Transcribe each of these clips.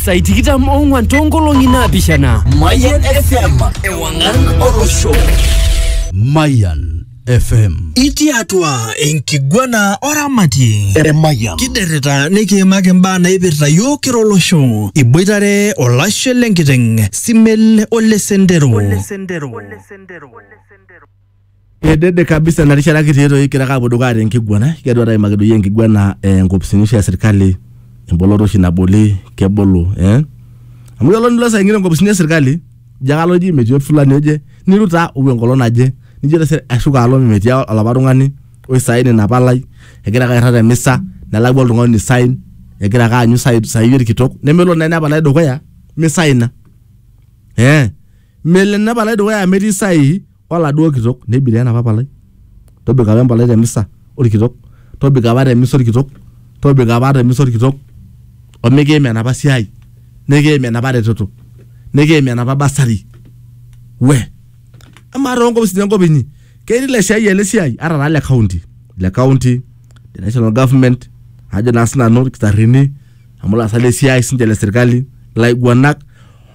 Sai tikitam ong'wan toonkolong'i naapishana. Mayan FM, ewang'an olosho. Mayan FM. Itii atua enkiguana oramatie Emayian. kiderrita nikiimaki imbaa naipirta yiok kira olosho iboitare olashe lenkiteng simel ole sendero Kedede kabisa ina rishata kitii toi kira kaapuo dukuya te nkiguana kigira aimaki doi enkiguana eh, nkopisini oshi e sirkali emboloto oshi naboli kebolo eh? amu kelo nilo saa ingine nkopisini e sirkali ijo kalo ji metii fulani oje niru taa opuo enkolong naje nijo tese ashuko alo metii olapa tung'ani oi sign ina palai egira ake airrag te misa nelakua oltung'ani oi sign egira ake aanyu sai- saai orkitok nemelo naa ina palai dukuya misaina eh? Melo ena palai dukuya amu etii sahihi oladuo kitok. Nebiria enapa palai. Tobiko apa empalai te misa olkitok. Tobiko apa te misa olkitok. Tobiko apa te misa olkitok. Omikiim enapa siai. Nikiim enapa reteto. Nikiim enapa bursary. We. Amaa too nkopisini enkop inyi ketii ilaisiayiak le siai ata taa le county le county le national government ajo naa sinanu ilkitarrini amu ilaasak le siai siinche le sirkali ilaiguanak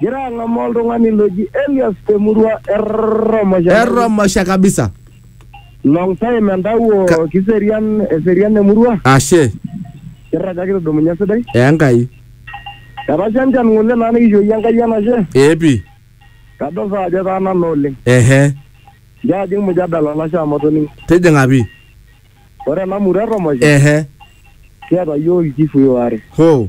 Gira ang'amaa oltung'ani loji Elias te murua e Romosha. Erromosha kabisa. Long time entawuo Ka- kiserian eserian emurua. Ashe. Kirraga kitudumunye sidai. Enkai. Etasha enchan ng'ole naa nikishooyie Enkai enashe. Ee pi. Kadol saa ajo etaana naa oleng. Ehe. Nchoo ajing mujadala olashe amu atoning'o. Tijing'a pi. Ore ena murua e Romosha Ehe. kiata yiok ilchifui waare. Hoo.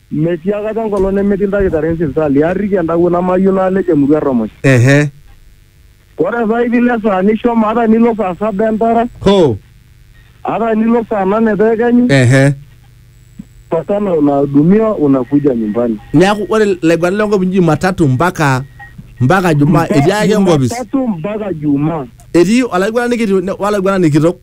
Metii akata enkolong nemetii ildakitarini sipitali. Aarriki entawuo namayieu naalej emurua erromosh. Ehe. Ore saa hii vile saa nishomo ata nilo saa saba entara. Hoo. Ata nilo saa nane te ekenyu. Ehe. Patana unahudumiwa unakuja nyumbani. Neaku ore ilaiguanak le nkop inji matatu mpaka mpaka jumaa etii ake enkopis. Jumatatu mpaka jumaa. Etii olaiguanani kiti wolaiguanani kitok.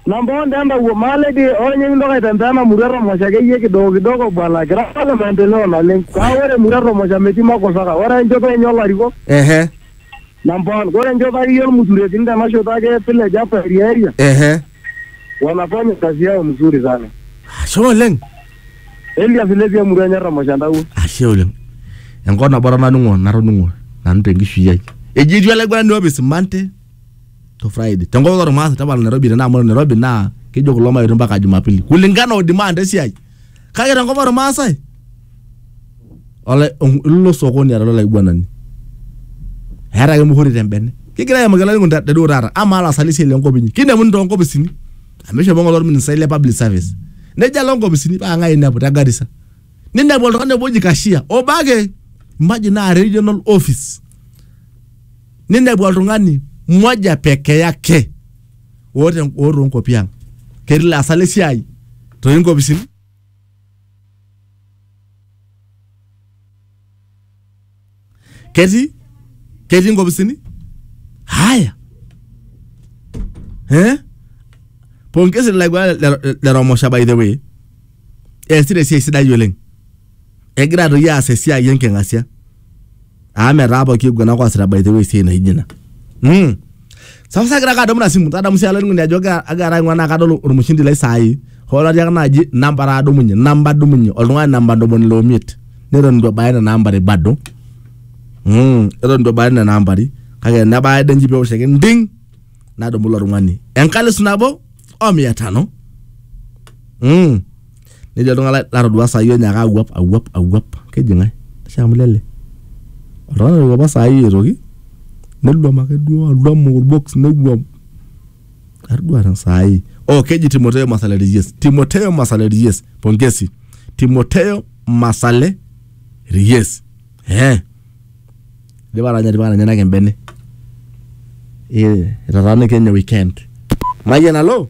Namba one entawuo maale dii hoo ninye kintoki aitembea ena murua e Tomosho akeyie kidogo kidogo bwana kira apa le maendeleo naleng. Kake ore emurua e Tomosho metii makosa kake ore enchoto enye olarikok Ehe. namba one ore enchoto akeyie olmusuretini tena shoto ake e village hapa area area Ehe. wanafanya kazi yao mzuri sana. Ashe oleng. Elias Levi emurua enye e Tomosho entawuo. Ashe oleng. Enkop nabo apa natoning'o natoning'o nanu tenkishui ai. Eji etii olaiguanani opismante to Friday. Te nkokoto ormaasai tapala Nairobi tenaa amu ore Nairobi naa kejo kulo mayetu mpaka Jumapili kulingana o demand esiai. Kake te nkop ormaasai olai ilo sokoni ara olaiguanani. Eeta ake muhuri te mbene. Kigira aimaki olainining'oni te duo taata amaa laasak le siai le nkop inyi kinemuni too nkopisini amu ishopo ng'ole orministai le public service. Nejo alo nkopisini paa ng'ai inepu te Garissa. Ninepu oltung'ani obo oji cashier obo ake imagine naa regional office. ninepu oltung'ani moja peke yake oota en- oota onkuapi ang ketii laasak lesiai toonkopisini ketii ketii nkopisini haya eh? pongezi laigua leromosha by the way eesita esiai sidai oleng egira toi aas esiai enking'asia amu metaa pooki aiguanak oasita by the way esiai naijo ina mm. sasa sagira ake adamu ina simu tadamu sii olainining'oni ajo agira agira aing'ua naa kadol ormushindi lai saai hoo latii ake naaji namba are adumunye namba adumunye oltung'ani namba ntomoni ile omiet neton itu ebaya nena ambari bado mm. eton itu ebaya nena ambari kake nebaya ade nji pewosh ake nding nadumu ilo tung'ani enkalisu nabo o mia tano mm. nejo oltung'ani latodua sai onyaaka awuap awuap awuap keji ng'ae ashe amu lele oltung'ani otowuapa sai aitoki neluam ake duo aluam orbox newuam atodua ta sai oh keji Timoteo Masale Reyes Timoteo Masale Reyes pongezi Timoteo Masale Reyes eh idipa atanya tipika nenyenak embene eh etataana kenya weekend mayian alo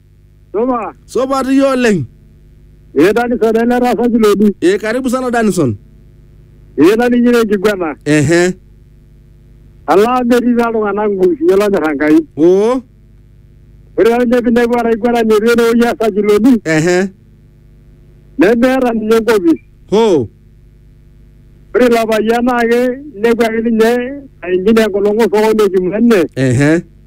Soma. Sopat iyie oleng. Ee Danison ele taasa Kilodi. Ee karibu sana Danison. Ee naning'ito enkiguana. Ehe. Alaa metii taa iltung'anak nkurusinyo lonyor Enkai. Oo. Ore taa ninye pinepu olaiguanani etii enewueji easa Kilodi, Ehe. nemeeta ninye enkopis. Hoo. Ore ilo payian naake inepu ake ninye aing'ina enkolong osokoni ekimene, Ehe.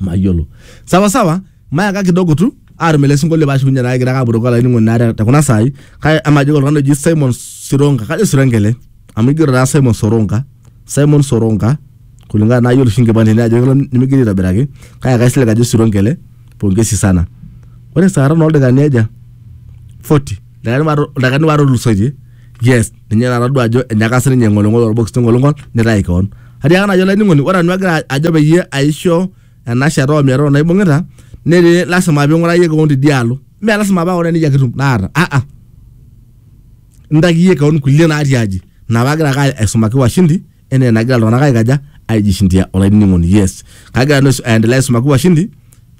mayiolo sawa sawa mayaka kidogo tu atum ele sinkolio paashukunye naa kigira ake apurroko olainining'oni naa te- tekuna saai kake amajo ake oltung'ani oji Simon Sironga kajo Sironga ele amu igero taa Simon Soronga Simon Soronga kulingana naa ayiolo oshi inkipandeni ajo kelo nimigeri aitobiraki kake kaisilig ajo Sironga ele pongezi sana ore saa are oldakikani aja 40 ildakikani waare ildakikani waare otulusoitie yes ninye natadua ajo enyaka sininye eng'olong'ol orbox tengolong'ol nitayu keon atiaka najo olainining'oni ore nanu agira ajo peyie aisho ena shata omiero naibung'ita netii lasima ping'urayie keon tidialo mee lasima paa ore nejia kitum naata aa intakiyie keon kulie natii aji ina paagira ake aisumaki washindi enaa enagira iltung'anak aikaja aijishindia olainining'oni yes kagira nanu aisum- aendelea aisumaki washindi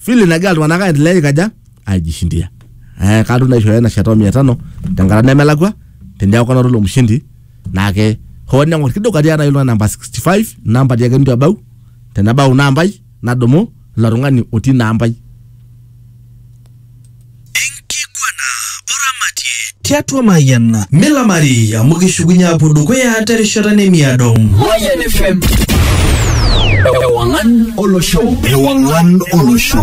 vile nagira iltung'anak aendelea aikaja aijishindia eh, katum naishooyo ena shata o mia tano tenkata nemelakua teneeku kanoto ilo mshindi naake hoo neng'or kidogo atii aitayu iltung'anak namba 65 namba tiake nitu ebau tenebau nambai nadumu ilo tung'ani otii ina ampai. Enkiguana oramatie tiatua Mayian. Milamari amu kishukunye aapuo dukuya terishata nemiado. Mayian FM. Ewang'an olosho. Ewang'an olosho.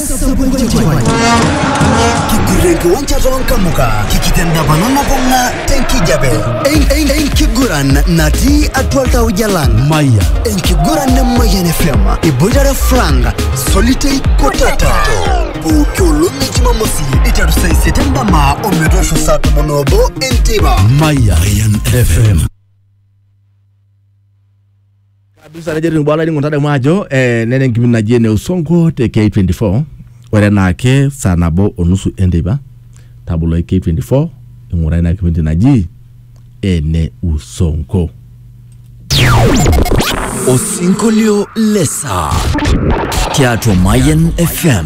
Kigurankiwanja toonkamuka kikitendapana nabung'a tenkijape En- en- enkiguran natii atua iltauja lang maya enkiguran nemayian fm iboitare frank solitei kotata pooki olong e jumamosi iteru saa isiet endama ometoosho saa tomon oobo enteipa maya fm kabisa nejo etiu bwana ningo ntadamu ajo eh, nena enkipindi naji ene usongo te K24 ore enaake saa nabo onusu enteipa tabolo K24 ing'ura ina kipindi naji ene usongo Osinkolio lesa tiatua Mayan FM.